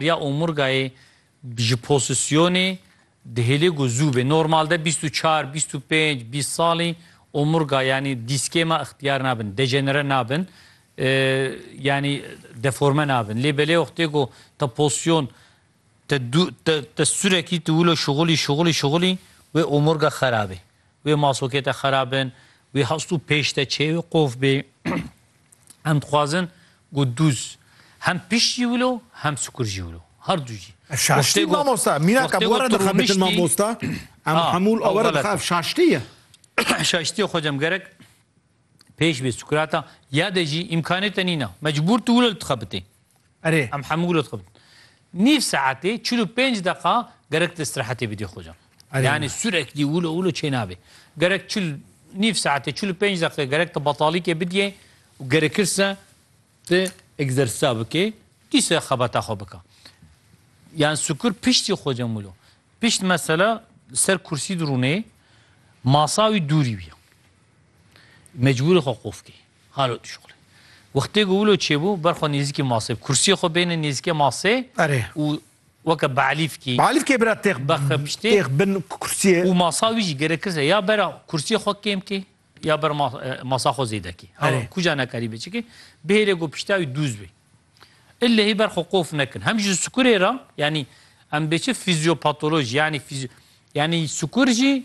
Riya omurgayê ji posîsyonê dihêlê ku zû bê. Normalde bîst û çar, bîst û pênc, bîst salî omurga yanî dîskê me ixtiyar nabin, dejenere nabin, yanî deforme nabin. Lê belê wextê ku te posîyon te tu surekî tu wilo şixulî, şixulî, şixulî wê omurga xerabê. Wê masokê te xera bin, wê hastû pêş te çê wê qof bê. Em dixwazin ku dûz hem pişt jî wilo hem sikur jî wilo. Her du jî. Ev şaştî mamosta. Mîna ka bi we re dixebitin mamosta. Em hemû li we re dixe ev şaştî ye. Şaştî ye xwecem gerek. Pêş bê Sukrata ya de jî îmkanê te nîna. Mecbûr tu wilo li dixebitê. Erê. Em hemû wilo dixebitin. Nîv saetê çil û pênc deqa gerek tu îstirahetê bidî xwe can. Erê. Yanî sûreklî wilo wilo çê nabê. Gerek çil nîv saetê çil û pênc deqê gerek tu betalîkê bidîyê û gerekirse tu egzersîza bikê dîsa xebata xwe bika. Yan Sukr piştî xwe can wilo. Pişt mesela li ser kursî dirûnê masa wî dûrî wî ya. Mecbûrî xwe qof kir. Halo tu şuxlê. Wextê ku wilo çêbû ber xwe nêzîkî masê bi kursiyê xwe bêne nêzîkê masê Erê. û weke beelîfkî Beelîfkê bira têx Bexwe piştê. têx bin kursiyê. Û masa wî jî gerek kirse ya bera kursiyê xwe kêm kê ya ber ma masa xwe zêde kê. Halo Erê. kuca nekarîbê çikê. Bihêle ku pişta wî dûz bê. Illehî ber xwe qof nekin. Hem ji sikurê re yanî em bê çi fîzyopatoloj yanî fîzyo yanî sikur jî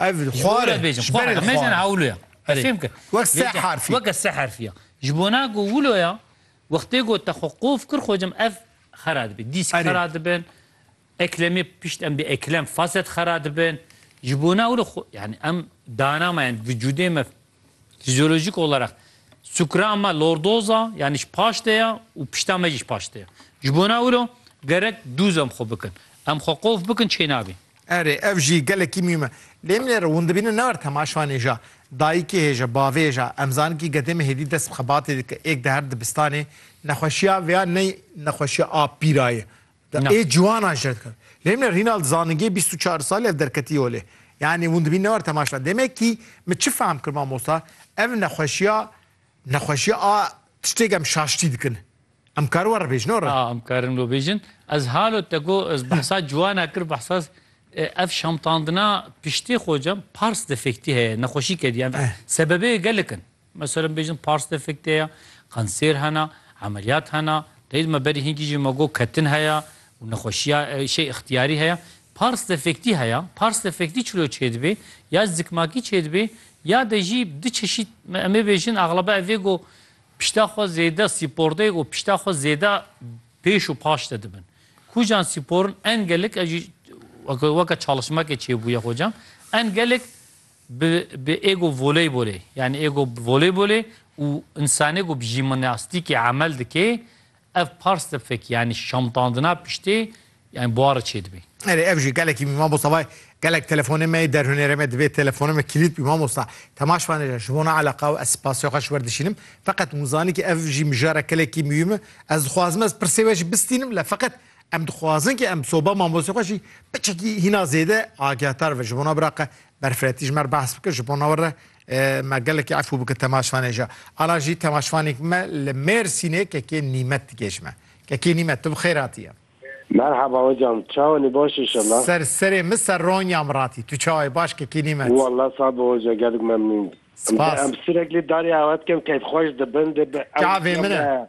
Ev xwar e. Bêjim xwar e. Mêjin hewlo ya. Fêm kir. Wek se harfî. Wek se harfî ya. Ji bo na got wilo ya, wextê got te xwe qof kir xwecim ev xera dibin. Dîsk xera dibin. Eklemê pişt em dê eklem faset xera dibin. Ji bo na wilo xwe yani em dana me yani vücudê me Fizyolojîk olarak sukra me lordoz a yanî ji paş de ye û pişta me jî ji paş de ye. Ji bona wilo gerek dûz em xwe bikin. Em xwe qof bikin çê nabîn. Erê, ev jî gelekî mîm e. Lê min êro hûn dibînin ne erd hema şanê ja, dayikê hê ja, bavê hê ja. Em zanin kî gedê me hêdî dest bi xebatê dike. Êk di her dibistanê nexweşiya vêya ney nexweşiya a pîra ye. Da ê ciwanan şer dikin. Lê min Rînald zaningê bîst û çar salî ev derketî olê. Yanî hûn dibîn ne war temaşa. Demekî min çi fehm kir mamosta, ev nexweşiya nexweşiya a tiştêk em şaştî dikin. Em karin we re bêjin ora? A em karin we bêjin. Ez halo te got ez behsa ciwana kir behsa ev şamtandina piştê xocam pars defektî heye nexweşî kediye. Sebebê gelek in. Meselem bêjin pars de fikte ye, kanser hene, emeliyat hene, teyîd me berî hinkî jî me got ketin heye û nexweşiya şey îxtiyarî heye. Pars de fiktî heye, pars de fiktî çilo çêdibê ya zikmakî çêdibê ya de jî di çeşît em ê bêjin exlebe ev ê got pişta xwe zêde spor de û pişta xwe zêde pêş û paş de dibin. Kujan sporin en gelik ev jî weke çalışmekê çêbûye xocam en gelik Bi bi êgo voleybolê yanî êgo voleybolê û însanê ku bi jîmnastîkê emel dike ev pars de fekî yanî şamtandina piştê yanî buari çêdibê. Erê ev jî gelekî mî mamosta vay gelek telefonê me yê derhunêrê me divê telefonê me kilît bî mamosta te maş vanêje ji bo na eleqa û ez spasiya xwe ji wer dişînim feqet hûn zanî ke ev jî mijara kelekî mîyûm e ez dixwazim ez pirsê we jî bistînim le feqet Em dixwazin ke em soba mamostê xwe jî biçekî hîna zêde agahtar ve. Ji bona biraqa berfiretî ji me re behs bike, ji bona we re me gelekî efû bike temaşvanê jî. Ala jî temaşvanêk me li Mêrsînê kekê Nîmet digêj me. Kekê Nîmet tu bi xêr hatiye. Merhaba hocam, çawanî baş inşallah. Ser serê min ser Ronya min ratî. Tu çawayî baş kekê Nîmet. Wallah sağ bi hoca gelek memnûn. Spas. Em sireklî darê awe dikim keyfxweş dibin dê bi Çavê min e.